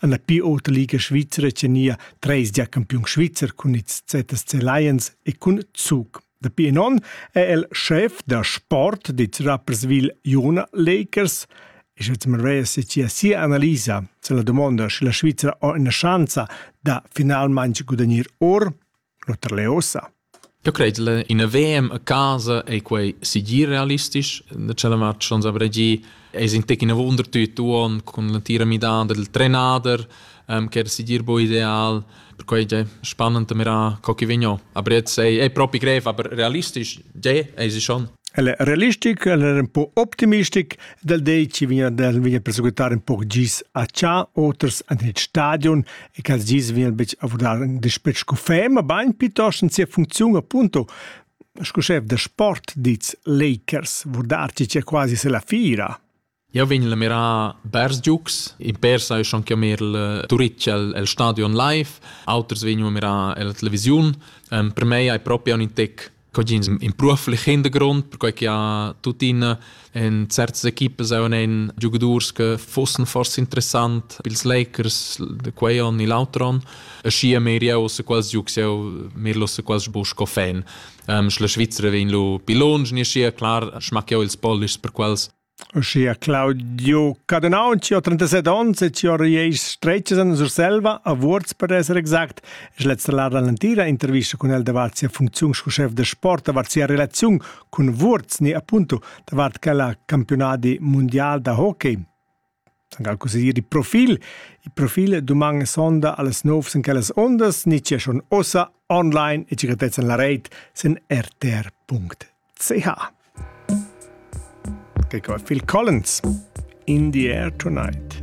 Alla pi ota liga svizra tenia treis gia campiun svizzer cun ils ZSC Lions e cun Zug. Dapi in on è el chef da sport dits Rapperswil Jona Lakers e Jetsman Reyes sia sia analisa se la domanda sche la Svizzera ha ina chance da finalmente gudagnir or L'oter l'he ussa. Eu cret la ina VM a casa ei quei segir realistisch. Da tschella match schons avrai gi es in tec ina wunder tüt uon cun l'antira midada del trenader, che era segir bu ideal. Perquai già spannend da mirar co chi vegn o. Aber jetzt ei ei propi grev, aber realistisch già esi schon. El è realistic, el è un po' optimistic dal dei chi vegna, vegna perseguitare un po' gis a Cha, oters an il stadion e quels dis vegn betg a vudar in dispetg cu fem, ma bain pitost en sia funcziun appunto sco chef da sport diz Lakers, vudar ti c'è quasi se la fira. Jau vegn la mirar bers giucs, in per sai schon che mir il Turitg el stadion live, auters vegnu a mirar la televisiun. per me hai proprio un intec Cogins imprua flichend grond, perquai che ha tuttina en certas equipas auch einen Giocadors che fossen forse interessant pils Lakers de quei on e l'altro on. E schi a mir jau se quals giucs jau mir lo se quals bu sco fan. Ähm, schla Svizzera vegn lo pi longe, ni schi klar schmack jau ils Polish per quals Uschia Claudio Cadenau, chi ho 37 ons e chi ho riais stretgas in Surselva, a Vuorz per esser exact, es lezza lar da l'antira intervista cun el davart sia funcziun sco chef da sport, davart sia relaziun cun Vuorz ni appunto davart quella campiunadi mundial da hockey. Angal così il profil. Il profil duman sonda alles novs in quellas ondas, ni c'è schon ossa online e cicatetzen la reit sin rtr.ch. Che qua Phil Collins in the air tonight.